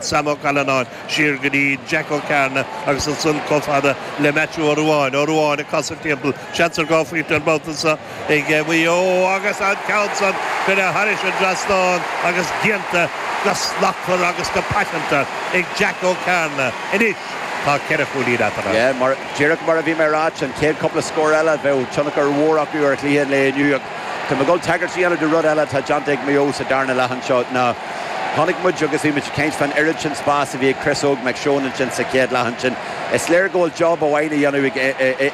Sam Ó Callanáin siar go dtí Jack Ó Cearnaigh agus ansan chomh fada le Maitiú Ó Ruáin. Ó Ruáin ag casadh timpeall, seans ar dhá phointe an babhta seo ag Maigh Eo agus an ceann san curtha thairis an dtrasnán agus déanta go slachtmhar agus go paiteanta ag Jack Ó Cearnaigh. Anois tá ceithre chúilín eatarthu. Díreach mar a bhí mé a ráit, an chéad chúpla scór eile, bheadh tionchar mhór acu ar chluiche an lae inniu ach tá mé ag dul tagairt a dhéanamh do rud eile atá déanta ag Maigh Eo sa darna leath anseo ná Chonaic muid agus bhí muid ag caint fán oiread sin spáis a bhí ag Chris Óg Mac Seoin ansin sa chéad leath ansin. Is léir go bhfuil job amháin a dhéanamh ag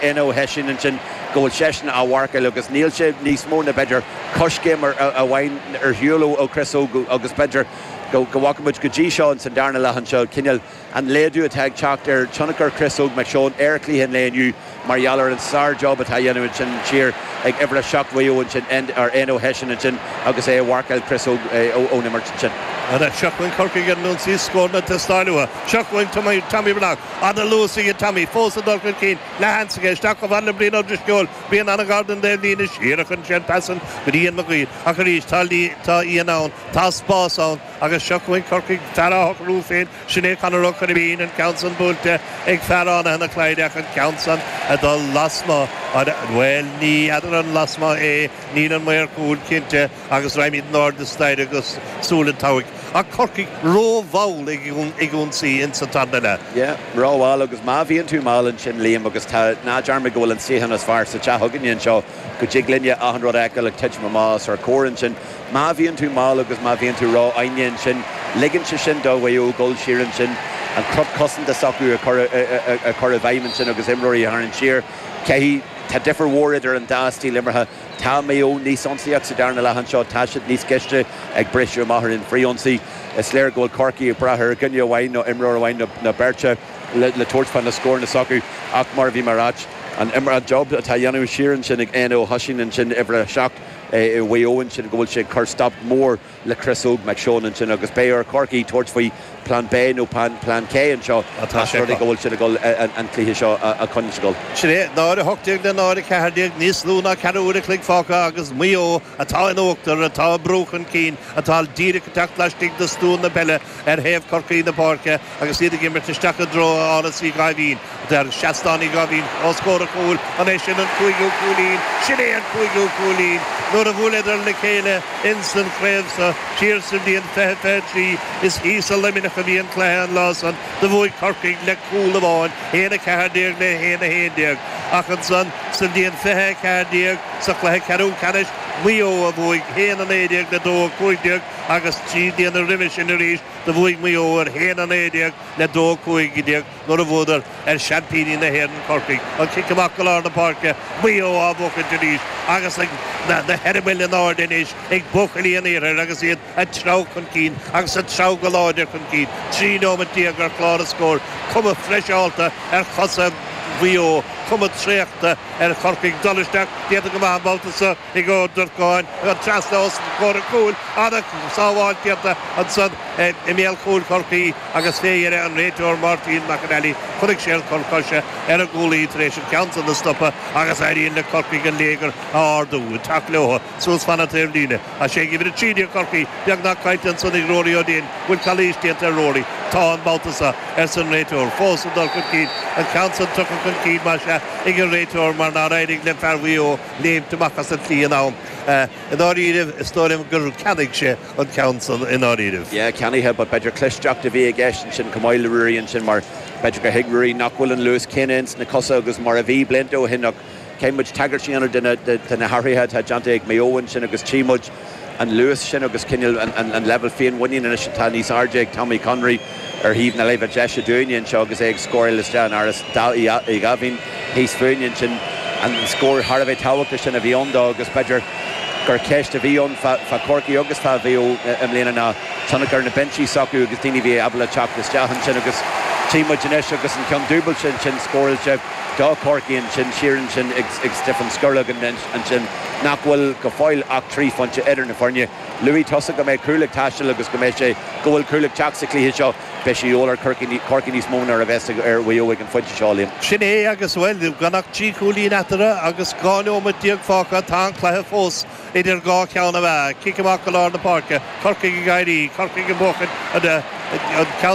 Éanna Ó hOisín ansin, go bhfuil seisean á mharcáil agus níl sé níos mó na b'fhéidir coiscéim amháin ar shiúl ó Chris Óg agus b'fhéidir go bhfaca muid go dtí seo sa darna leath anseo cineál An laghdú atá ag teacht ar thionchar Chris Óg Mhic Seoin ar chluiche an lae inniu mar gheall ar an sár job atá a dhéanamh ansin siar ag uimhir a seacht Mhaigh Eo ansin ar Éanna Ó hOisín ansin agus é a mharcáil Chris Óg ón imirt ansin. Anois seo chugainn Corcaigh ar an ionsaí, scóranna ag teastáil uathu. Seo chugainn Tommy Tommy Breathnach, ana luas aige Tommy, fós ag dul chun cinn, leathsheans aige, isteach chomh fad le Brian Ó Drisceoil, Brian ana ghar don dtaobhlíne, siar a chuireann sé an pas san go dtí Ian Mag Uidhir, ach arís tá tá Ian ann, tá spás ann, Agus seo chugainn Corcaigh, fear á shocrú féin, sin é Conor Ó Coirbín, an ceann san buailte ag fear Fhánaithe na Clyda ach an ceann san ag dul lasmuigh, an, bhuel, ní fheadar an lasmuigh é, níl an maor cúil cinnte agus raghaimid in airde staighre go Súil an tSeabhaic. Ach Corcaigh rómhall ag ionsaí ins an tarna leath. Yeah, rómhall agus má bhíonn tú mall ansin, Liam, agus tá, ná dearmad go bhfuil an suíochán is fearr sa teach againne anseo, go dtig linne achan rud a fheiceáil ag titim amach os ár gcomhair ansin. Má bhíonn tú mall agus má bhíonn tú rófhoighneach ansin ligeann sé sin do Mhaigh Eo dul siar ansin, an cruth cosanta s'acu a chur i bhfeidhm ansin agus imreoirí a tharraingt siar. Caithfidh, tá difear mhór idir an dá stíl imeartha. Tá Maigh Eo níos ionsaíoch sa darna leath anseo, tá siad níos cliste ag briseadh amach ar an bhfrithionsaí. Is léir go bhfuil Corcaigh ag brath ar dhuine amháin nó imreoir amháin nó beirt le tabhairt fá na scóranna s'acu ach mar a bhí mé a ráit, an job atá a dhéanamh siar ansin ag Éanna Ó hOisín ansin, uimhir a seacht, Mhaigh Eo ansin, go bhfuil sé ag cur stop mór le Chris Óg Mac Seoin ansin agus beidh ar Chorcaigh tabhairt faoi Plean B nó Plean C anseo más rud é go bhfuil siad ag dul an cluiche seo a chonsgal. Sin é, 0:18 le 0:14, níos lú ná ceathrú uair an chloig fágtha agus Maigh Eo, atá in uachtar, atá ag brú chun cinn, atá díreach ag teacht laistigh de stua na peile ar thaobh Chorcaí na páirce agus iad ag imirt isteach i dtreo Áras Uí Dháimhín nó Seastán Uí Dháimhín. Os comhair an chúil, an é sin an cúigiú cúilín? Sin é an cúigiú cúilín! nuair a bhuaileadar le chéile ins an chraobh so thiar sa bhliain fiche fiche trí. Is thíos i Luimneach a bhí an cluiche an lá san. Do bhuaigh Corcaigh le cúl amháin, haon a ceathair déag le haon a haon déag. Ach ansan sa bhliain fiche a ceathair déag, sa chluiche ceathrú ceannais, Maigh Eo a bhuaigh haon a naoi déag le dó a cúig déag, Agus trí bliana roimhe sin arís do bhuaigh Maigh Eo ar a haon 19 le 2 15 nuair a bhuadar ar seaimpíní na hÉireann, Corcaigh. An cic amach go lár na páirce, Maigh Eo á bhuachaint arís agus na heireabaill in airde anois ag buachaillí an iarthair agus iad ag treabhadh chun cinn agus ag treabhadh go láidir chun cinn. 13 nóimeat ar chlár an scóir, cuma freiseálta ar chosa Mhaigh Eo, cuma thraochta ar Chorcaigh. Dul isteach déanta go maith an babhta seo. ag Ó Durcáin, trasna os comhair an chúil an tsábháilteacht ansan i mbéal chúl Chorcaí agus fé dheireadh an réiteoir Máirtín McAnally chonaic sé an cor coise ar an gcúlaí tar éis an ceann san a stopadh agus éiríonn le Corcaigh an léigear a ardú, ag teacht leotha, suas fan an taobhlíne. Tá sé ag uimhir a trí Chorcaí beagnach caillte ansan ag Rory O'Dane, An bhfuil calaois déanta ar Rory? Tá, an babhta so, arsa an réiteoir. Fós ag dul chun cinn, an ceann san tugtha chun cinn, más ea, ag an réiteoir mar nár éirigh le fear Mhaigh Eo, léimt amach as an tslí in am. I ndáiríribh, is dóigh liom gur cheannaigh sé an ceann san i ndáiríribh. Yeah, ceannaithe, but b'fhéidir clisteacht a bhí i gceist ansin chomh maith le Ruairí ansin mar b'fhéidir gur thuig Ruairí nach bhfuil an luas céanna ins na cosa agus mar a bhí blianta ó shin ach caithfidh muid tagairt a dhéanamh do na hathruithe atá déanta ag Maigh Eo ansin agus tchí muid an luas sin agus cineál an leibhéal féinmhuiníne anois atá níos airde ag Tommy Conroy ar thaobh na láimhe deise dúinne anseo agus é ag scóráil isteach in Ardán Uí Dháimhín thíos fúinne ansin. An scór thar a bheith tábhachtach sin a bhí ann dó agus b'fhéidir gur cheist a bhí ann fá Chorcaigh agus fá Mhaigh Eo i mbliana ná tionchar na bpinsí s'acu agus daoine a bhí ábalta teacht isteach ansin agus tchí muid anois agus an ceann dúbailte ansin scóráilte do Chorcaigh ansin siar ansin ag Stiofán Scoragan ansin. nach go bhfuil go fóill ach trí phointe idir na foirne. Luaigh tusa go mbeidh cúl ag teastáil agus go mbeidh sé, go bhfuil cúl ag teacht sa chluiche seo. Beidh sé de dhíth ar Chorcaigh níos mó ná a bheas ar Mhaigh Eo ag an phointe seo, Liam. Sin é agus, bhuel, gan ach trí chúilín eatarthu agus dhá neomat déag fágtha, tá an cluiche fós idir dhá cheann na meá. Cic amach go lár na páirce, Corcaigh ag éirí, Corcaigh ag buachan an ceann.